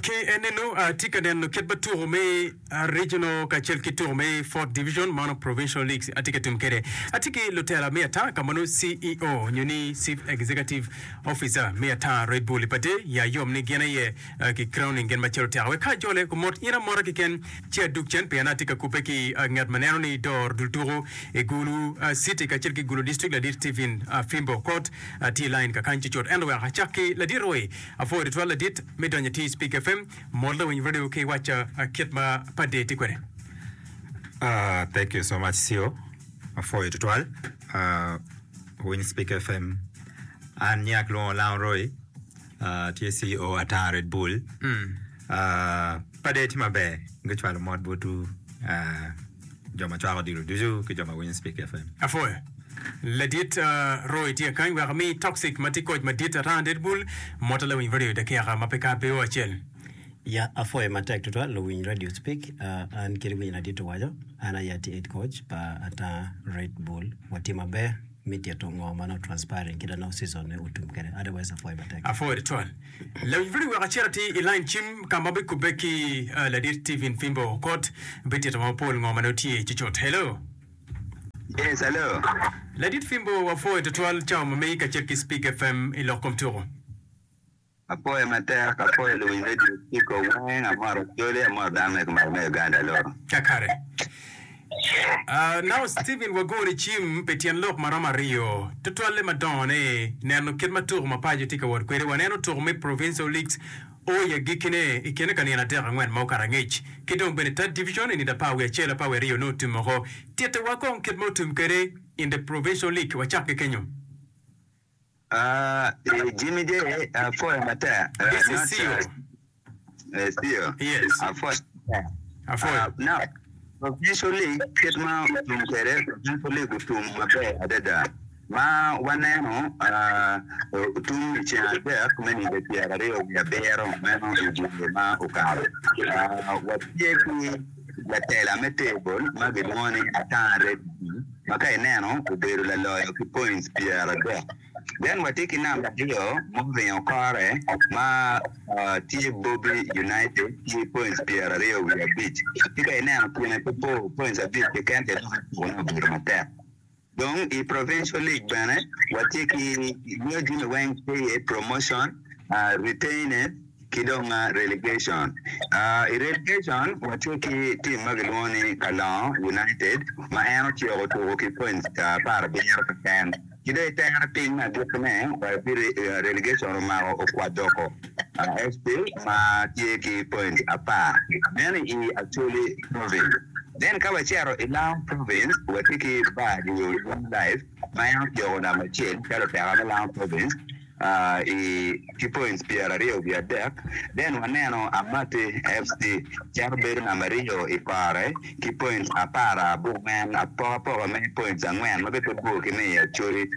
Ki eninu atye ka neno kit ma tuko me Regional kacel ki tuko me Fourth Division mono Provincial Leagues atye ka tim kwede. Atye ki lutela me ata ka mono CEO nyo ni Chief Executive Officer me ata Red Bull ipate ya yom ni gin aye ki crowning gin macalo teka wek ka ajole kumot in amota kiken ci adug cen pien atye ka kubbe ki ngat ma neno ni dor dul tuko i Gulu City kacel ki Gulu District ladit Stephen Fimbo Okot Atye i lain kakany cucut ento wek acak ki ladit roi. Apwoyo tutwal ladit me donyo i tic Speak FM. Mot lawiny radio ki waca kit ma padde tye kwede. Aah thank you so much Sio apwoyo tutwal aah winy speak FM an nying alwongo Lango Roy Atye CEO ata Red Bull. Pade tye maber. Gucwalo mot botwu jo ma cwako odilo ducu ki jo ma winyo Spik FM. Apwoyo. Ladit Roy tye kany wek ami Toxic ma tye koc madit ata and Red Bull mot ala winy radio dakika ma pe kar pe o acel. Ya apwoyo matek tutwal luwiny radio Spik an kit winy ladit owaco an aye atye head coach pa ata Red Bull watye maber. me tito ngo ma nongo transpiring kita nongo season ne otum kede otherwise apwoyo matek. Apwoyo tutwal. Lawinj video wek acit ati i line cim ka ma bikubbe ki ladit Steven Pimbo okot bi tito wa mapol ngo ma nongo tye cucut. Hello. Yes, hello. Ladit Pimbo wapwoyo tutwal cawa ma megi kacel ki Spig FM i lok kom tuko. Apoye matek apoye luwiny radio ciko weng amoro acholi amoro dano me kumalo me Uganda loo. Kakare. Uh, nongo Steven wagoni cim pi tyen lok maromo aryo, tutwalle madongo ni neno kit ma tuko mapaco tye ka wot kwede. Waneno tuko me Provincial Leagues o i agikkine i kine ka nino adek angwen ma okato angec, ki dong bene Third Division i nino apar wiye acel apar wiye aryo nongo otum oko. Tittewa kong kit ma otum kwede in the Provincial League, wacak ki kenyo. Aaah Jimmy J apwoyo matek. This is Ceo. Ceo. Yes. Apwoyo matek. Apwoyo. Uh, now, provincial league kit ma otum kwede provincial league otum maber adada ma waneno otum i ceng adek me nido pyeraryo wiye abiro meno i dye ma okalo watye ki latela me table ma gilwongo ni Atanga Reddy ma ka ineno obedo laloyo ki points pyeradek. Then watye ki namba aryo ma oringo kore ma tye Bobi United ki points pyeraryo wiye abic. Ci ka ineno kine ki bor points abic keken-ni dok i tuko-ne obedo matek. Dong i Provincial League bene watye ki nyo jami weng tye iye promotion, retained ki dong relegation. I relegation watye ki team ma kilwongo ni Kalongo United ma en ociko otuko ki points apar abiro keken ki dong i tere piny me agikki ne wa ki relegation omako Okwadoko FC ma tye ki points apar bene i Acholi Province. Then ka wacito i Lamu Province, watye ki bar nyo Long Life ma en otyeko namba acel calo oteka me Lamu Province i ki points pyera aryo wiye adek. Then waneno Amati FC cito bedo namba aryo i kore ki points apar abor ma en apoko apoka me points angwen ma bene pe bor ki me i Acholi.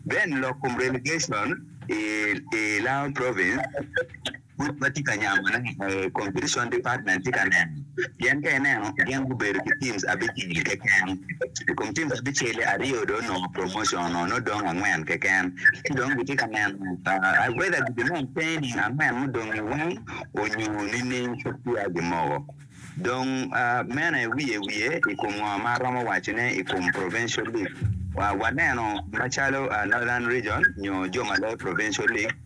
Then lok kom relegation i Lamu Province. Pud watye ka nyamone aye, Competition Department tye ka neno pien ka ineno gin gubedo ki teams abicel keken. I kom teams abicel-li, aryo dong onongo promotion-o nongo dong angwen keken ci dong gitye ka neno whether gibi maintaining angwen mudong-ngi weng onyo nining pud peya gimoko. Dong meno aye wiye wiye i kom ngo ma aromo wacone i kom Provincial League. Waneno macalo Northern Region nyo jo ma loyo Provincial League.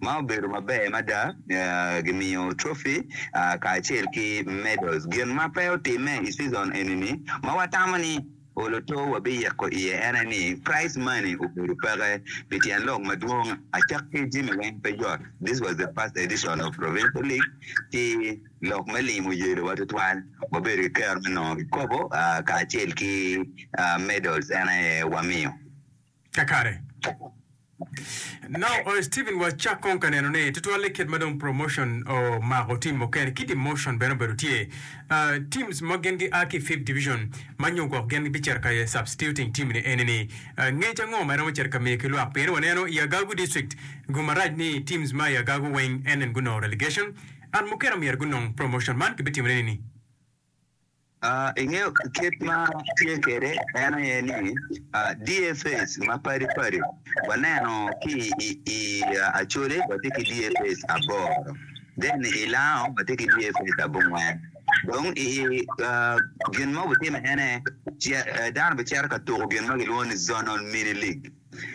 ma obedo maber mada, gimiyo trofi kacel ki medals. Gin ma pe otimme i cizon eni-ni ma watamo ni Oloto wabiyeko iye en aye ni prize money obedo peke pi tyen lok madwong acakki jami weng pe yot. This was the first edition of Provincial League ki lok me lim oyelowa tutwal. Wabedo ki kero me nongo kikopo kacel ki medals en aye wamiyo. kakare. Nongo Steven wacak kong ka neno ni tutwalle kit ma dong promotion omako team mukene ki demotion bene obedo tye. Teams ma gin gi a ki fifth division ma nyo gwok gin bi cito ka substituting team ni eni ni ngec ango ma romo cito ka miyo ki lwak pien waneno i Agagu district gu marac ni teams ma i Agagu weng NN gunongo relegation and mukene omyero gunong promotion man ki bi timone nini? Ingeyo kit ma atye kwede? En aye ni, DFAs mapadi padi waneno ki i Acholi watye ki DFAs aboro, then i Lango watye ki DFAs abongwen. Dong i gin ma wutime en aye dano bicito ka tuko gin ma kilwongo ni Zonal Mini League.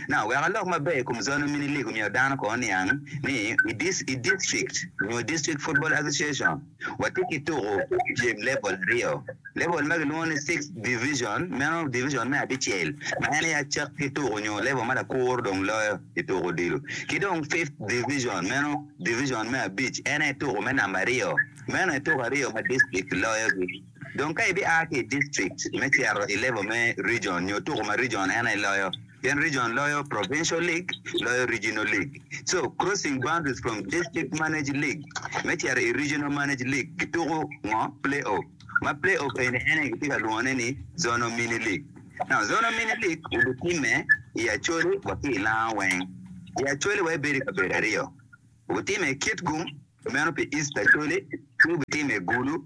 Now, wek alok maber i kom Zone Mini League omyero dano kono oniang ni i district nyo District Football Association watye ki tuko pyem level aryo. Level ma kilwongo ni Six Division, meno division me abicel ma en aye acak ki tuko nyo level ma lakuro dong loyo i tuko odilo. Ki dong Fifth Division, meno division me abic en aye tuko me namba aryo. Meno aye tuko aryo ma district loyogi. Dong ka ibia ki i district me cito i level me region nyo tuko ma region en aye loyo pien region loyo provincial league loyo regional league so crossing boundaries from district managed league me cito i regional managed league gituko ngo playoff ma playoff eni en aye kitye ka lwongone ni zonal mini league now zonal mini league obitimme i acholi wa ki i langa weng i acholi wa ibedo i kabedo aryo obitimme i kitgum meno pi east acholi ci obitimme i gulu.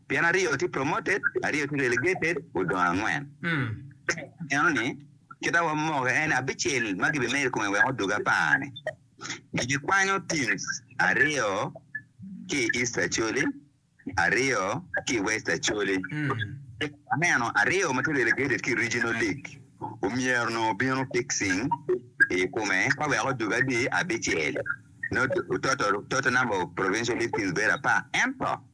Pien aryo tye promoted, aryo tye relegated, odong angwen. Ka ineno ni, kit ma wamoke en ni abicel ma gibimedo i kome wek odug apar-ni, gikwanyo teams aryo ki i East Acholi, aryo ki i West Acholi. Ka waneno aryo ma tye relegated ki i Regional League, omyero nongo obino fixing i kome ka wek odug adi? Abicel. Nongo total number of provincial league teams bedo apar. Ento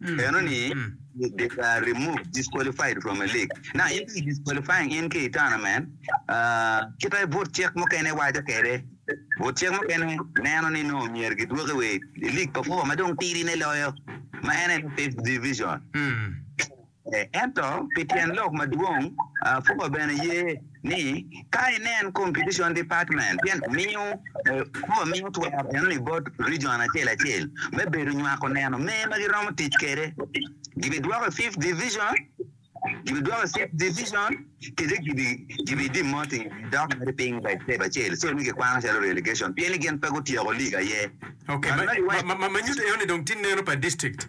Eno ni, they were removed, disqualified from a league. Now in ka i disqualifying in ki i tournament, kita i but cik mukene waco kede, but cik mukene neno ni nongo myero gi dwoki wa i league pa four ma dong tidi ne loyo ma en aye fifth division. Ento pi tyen lok madwong, four bene ye ni ka inen Competition Department pien miyo Jehovah miyo twero enoni bot rijon acel acel me bedo nywako neno mer ma giromo tic kwede. Gibidwoko i Fifth Division, gibidwoko i Sixth Division, kadi gibidemoting gidok mere piny pa step acel, so ni gikwano calo relegation pien ni gin pe gutyeko lig aye. Okay, ma nyuto enoni dong tye neno pa district.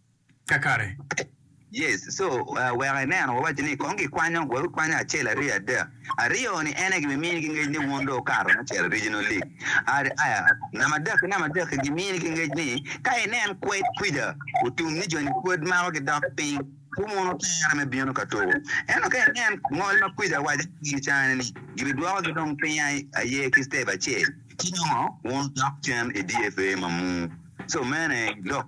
kakare. Yes, so wek ineno wawaco ni kong gikwanyo, wek wikwanyo acel aryo adek. Aryo ni ene gibimini ki ngec ni wun dong wukato me cito original league. Aya, namba adek ki namba adek ki gimini ki ngec ni ka inen kwed kwija otum ni joni pwod mako gidok piny ci wun wutere me bino ka tuku. Ento ka inen ngol ma kwija awaco ki in cani ni gibidwoko gi dong piny aye ki step acel ci nongo wun wudok cen i DFA mamur. So mene lok.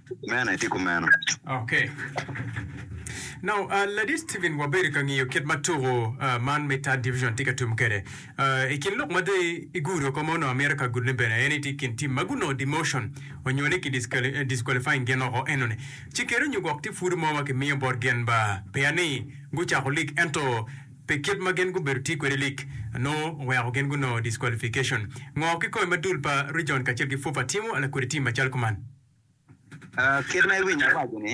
Mene, itye kumeno. Ok. Now, Ladit Stephen, wabedo ka ngiyo kit ma tuko man me Third Division tye ka tum kwede. I kin lok ma dong igudo oko ma onongo amito ka gudone bene, en aye tye i kin tim ma gunongo demotion onyo ni ki disqualifying gin oko enoni. Ci keri onyo gwok tye pwod mo ma kimiyo bot gin ba peya ni gucako lig ento pi kit ma gin gubedo tye kwede i lig nongo oweko gin gunongo disqualification. Ngo ki kony ma dul pa Region kacel ki FUFA timo lakodi tim macalo kuman? Kit ma iwinyo awaco ni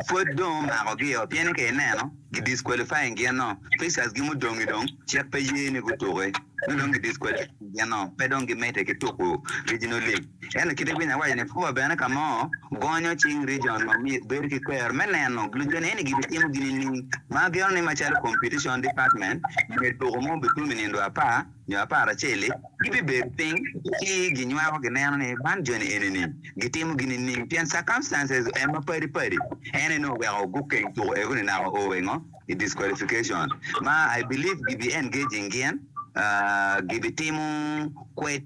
pwod dong omako gi oo pien ni ka ineno gi disqualifying gin noo Pacers gi mudongi dong cik pe ye ni gutuki nyo dong gi disqualifying gin noo pe dong gi mede ki tuku regional league ento kit iwinyo awaco ni FUFA bene ka mo gonyo cing region ma myero bed ki kwero me neno luco ni eni gi bitimo gi nining ma ageno ni macalo competition department myero tuku mo obitwom I nindo apar nyo apar acel-li, gibibedo piny ci ginywako gineno ni man joni eni-ni gitimo gin nining pien circumstances en ma padi padi en aye nongo oweko gukeng tuko ego ni naka o engo i disqualification ma I believe gibi engaging gien gibi timo kwed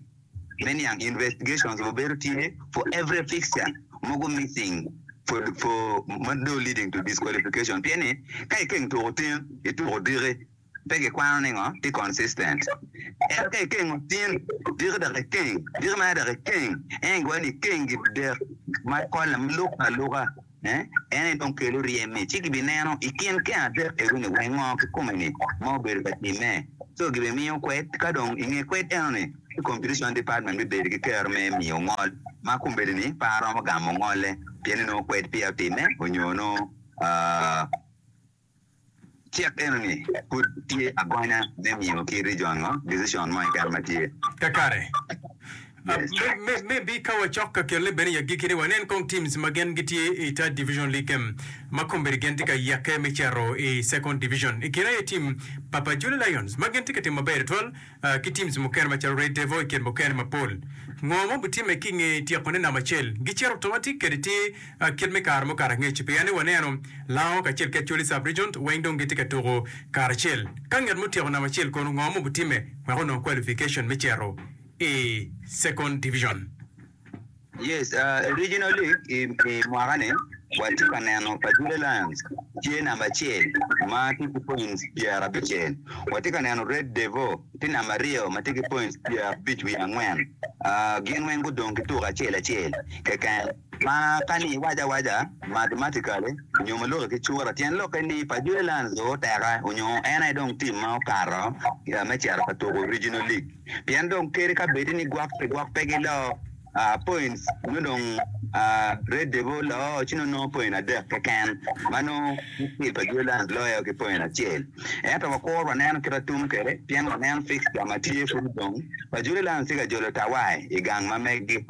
me niang investigations wa bedo tye for every fixture mogo missing for for ma dong leading to disqualification pien ni ka ikeng tuko tin ituko diki. pe gikwano ni ngo tye consistent. Ento ka ikengo tin diki dok ikeng diki mere dok ikeng en igoyo ni ikeng gi dek ma kolle ma luk ka luka en aye dong kelo ryemmi ci gibi neno ikin keng adek ego ni wai ngo kikome ni ma obedo ka timme so gibi miyo kwed ka dong inge kwed eno ni ci competition department bibedo ki kero me miyo ngol ma kombeddi ni pe aromo gamo ngolle pien ni nongo kwed peya otimme onyo nongo Cik enoni pud tye agonya me miyo ki rijongo decision mo keken ma tye. Kakare. Me, me, maybe ka wacok ka kelle bene i agikki ni wanen kong teams ma gen gitye i Third Division League game ma kombeddi gen tye ka yake me cito i Second Division. I kine aye team Papa Jule Lions ma gen tye ka timo maber twatwal ki teams mukene macalo Red Devil i kit mukene mapol. Ngo ma obitimme ki nge tyekone namba acel? Gicito automatic kadi tye kit me kare mukato angec pien ni waneno Lango kacel ki Acholi Sub Region weng dong gitye ka tuku kare acel. Ka nget ma otyeko namba acel kono ngo ma obitimme wek onong qualification me cito i Second Division? Yes, uh, originally i, i mwaka ni watye ka neno Pajure Lions tye namba acel ma tye ki points pyerabicel. Watye ka neno Red Devil tye namba aryo ma tye ki points pyerabic wiye angwen. Uh, gin weng gudong ki tuko acel acel keken. Ma ka ni iwaco awaca mathematically nyo ma loki ki cura, tyen lokke ni Pajure Lions dong oteka onyo en aye dong team ma okato uh, me cito ka tuko Regional League. pien dong kadi ka bedi ni gwok pi gwok pe giloo points nyo dong Red Devil loo ci nongo nongo point adek keken ma nongo Team pa Jue Lions loyo ki point acel. Ento wakuru waneno kit atum kwede pien waneno fixture ma tye kunu dong pa Jue Lions tye ka jolo tawai i gang ma megi.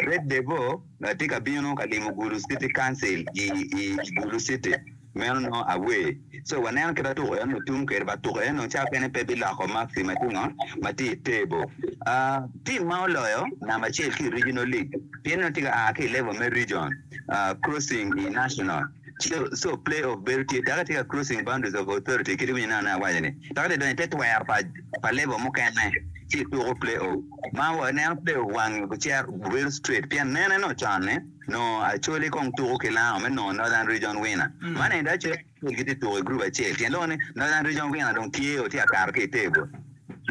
Red Devil tye ka bino ka limo Gulu City Council i Gulu City. Meno nongo awer. So waneno kit ma tuko eno tum kwede ba tuko eno cawa kene pe biloko maxi ma tye ngo ma tye i table. Aah team ma oloyo namba acel ki i regional league pien nongo tye ka aa ki i level me region aah crossing i national so so play off bedo tye taka tye ka crossing boundaries of authority kit iwinyo neno awaco ni taka tye ka donyo ite twero pa pa level mukene ci ituko play off ma waneno play off wange gucero gubedo straight pien nene nongo con ni Nongo Acholi kong tuko ki Lango me nongo Northern Region Winner. Man ento Acholi ki Acol gitye tuko i group acel. Tyen loko ni Northern Region Winner dong tye o tye akato ki i table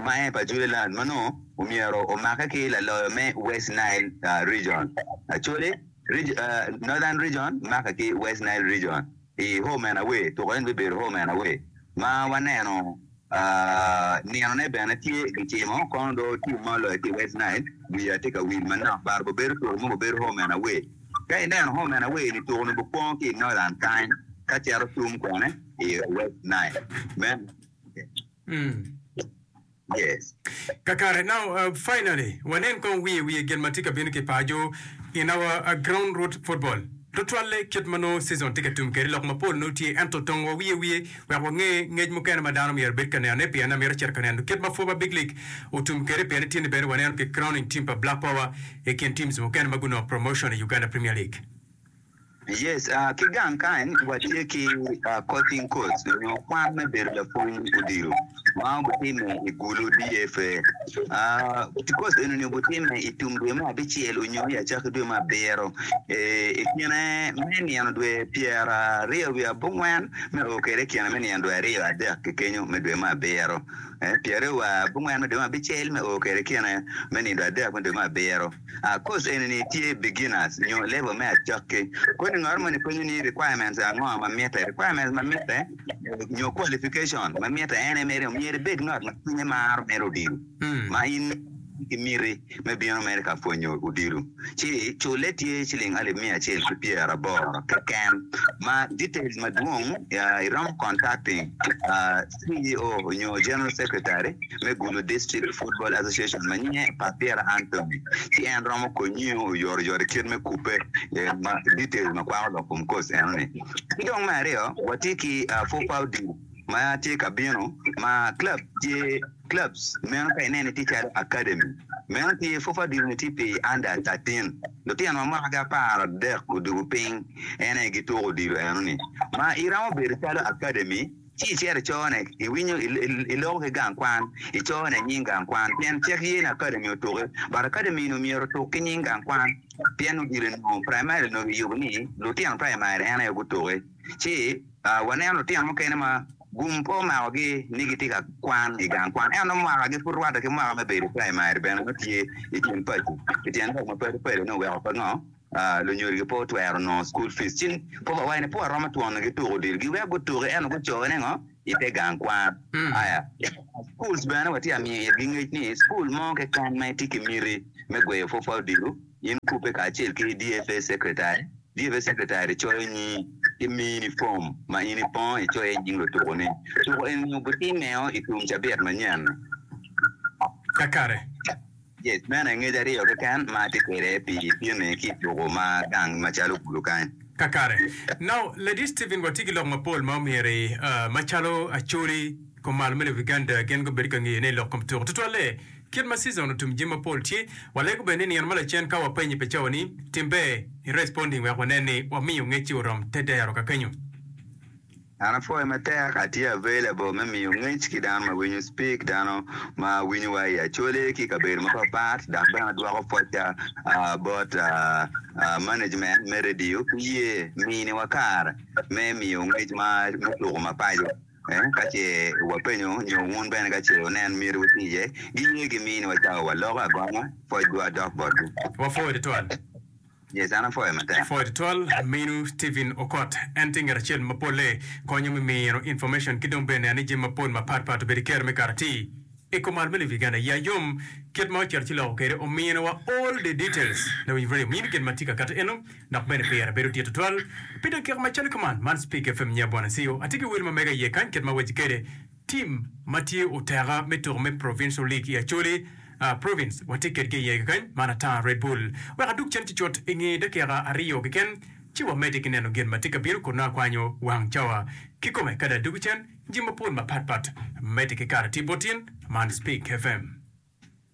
ma en pa Juliland ma nongo omyero omake ki laloyo me West Nile Region. Acholi Northern Region make ki West Nile Region. i Homenawe, tuko en bibedo Homenawe ma waneno ninone bene tye gicimo kono do tim ma oloyo ki West Nile wiya tye ka wil manok bar bo bedo tuko mogo bedo Homenawe ka ineno Homenawe ni tuko ni bu kwongo ki Northern kany ka cito tung kwene i West Nile me Yes. Kakare. Now, finally, wanen kong wiye wiye gin ma tye ka bino ki paco in our ground root football. Tutwalle kit ma nongo season tye ka tum kede lok mapol nongo tye ento tong wa wiye wiye wek wange ngec mukene ma dano myero bed ka neno ne pienne amito cito ka neno kit ma Foba Big League otum kede pien itye ni bene waneno ki crowning team pa Black Power ikin teams mukene ma gunongo promotion i Uganda Premier League. Yes, ki gang kany watye ki Coaching Course nyo kwan me bedo lapwony odilo ma obitime i Gulu, DFA. Course eni-ni obitime i tum dwe me abicel onyo i acakki dwe me abiro. I kine me nino dwe pyeraryo wiye abongwen me oo kwede i kine me nino dwe aryo adek ki kenyo me dwe me abiro. Pyeraryo wiye abongwen me dwe me abicel me oo kwede i kine me nino dwe adek me dwe me abiro. Course eni-ni tye beginners nyo level me acakki. Kodi ngaro moni penyo ni requirements ango ma mitte? Requirements ma mitte nyo qualification ma mitte en aye mere myero ibed ngat ma cwinye maro mito odilo ma in ki miti me bino mere ka pwonyo odilo. Ci culle tye ciling alip miya acel ki pyeraboro keken. Ma details madwong iromo contacting CEO nyo General Secretary me Gulu District Football Association ma nyinge Papira Anthony ci en romo konyiu oyoro yot i kit me kubbe ma details ma kwako lok kom coach eno ni. Ki dong me aryo wa tye ki Fofau Deal ma tye ka bino ma club tye clubs meno ka ineno tye calo academy meno tye Fofau Deal ni tye pi under thirteen lutino ma mwaka gi apar adek odwogo piny en aye gituko odilo eno ni ma iromo bedo calo academy Ci icito i cone, iwinyo, iloko ki gang kwan, icone nying gang kwan, pien cik ye ni akademi otuki. But akademi-ni omyero otuk ki nying gang kwan, pien odilo enongo praimari onongo kiyubo ni lutino praimari en aye gutuki. Ci waneno lutino mukene ma gum pe omakogi ni gitye ka kwan i gang kwan, ento mwakagi pud rwatte ki mwaka me bedo i praimari bene ma tye i kin paco. Pi tyen lok mapadi padi-ni oweko pe ngo? Lunyodo gi pe otwero nongo cukul fic ci kop awaci ni pud aromo twon gi tuko odilo. Giweko gutuki ento gucoki ni ngo? I te gang kwan. Aya, schools bene wa tye amiyo itgi ngec ni cukul mo keken ma itye ki miti me gweyo pwopwa odilo, in kubbe kacel ki DFA secretary. DFA secretary coyo nyingi ci mini form ma in ipongo icoyo iye nying lutuku ni. Tuku eni ogutimeo itum cabit manyen. Kakare. Yes, meno aye ngec aryo keken ma atye kwede pi pyem-mi ki i tuku ma gang macalo kulu kany. Kakare. Now, Lady Steven, watye ki lok mapol ma omyero i, ah, macalo acholi, kom malo me Luiganda gin gubedo ka ngeyone i lok kom tuku. Tutwalle, kit ma season otum jami mapol tye, walego bene ni nino ma lacen ka wapenyo i pacowa ni, Timbe, i responding wek wanen ni wamiyo ngec-ci orom te dero kakenyo. An apwoyo matek, atye available me miyo ngec ki dano ma winyo speak, dano ma winyo wa i Acholi ki kabedo mapat pat dok bene adwoko pwocca bot management me radio ki ye mini wa kare me miyo ngec ma me tuko mapaco ka ce wa penyo nyo wun bene ka ce wunen myero wu ti iye gi ye gi mini wa cawa wa loko agomo pwocwa dok botgi. Wapwoyo tutwal Pwod twal minu Steven Okot en tye ngat acel ma polle konyo me mino information ki dong bene ane jami mapol mapat pat obedo kero me kato atir I kom ot me Lobo Uganda ya yom kit ma ocito ci loko kwede omino wa all the details na wi radio mini gin ma tye ka kati eno dok bene pire bedo dit tutwal pi dakika macalo kuman man Speak FM nya Bwana Cio atye ki wil ma mega iye kany kit ma awaci kwede Tim ma tye oteka me tuko me Provincial League i Acholi Province watye kedgi iye kekeny, man ata Red Bull. Wek adug cen cucut i nge dakika aryo keken, ci wamedde ki neno gin ma tye ka bino kun nongo akwanyo wang cawa kikome. Kadi adugo cen jami mapol mapatpat, medde ki kare tye bot in man Speak FM.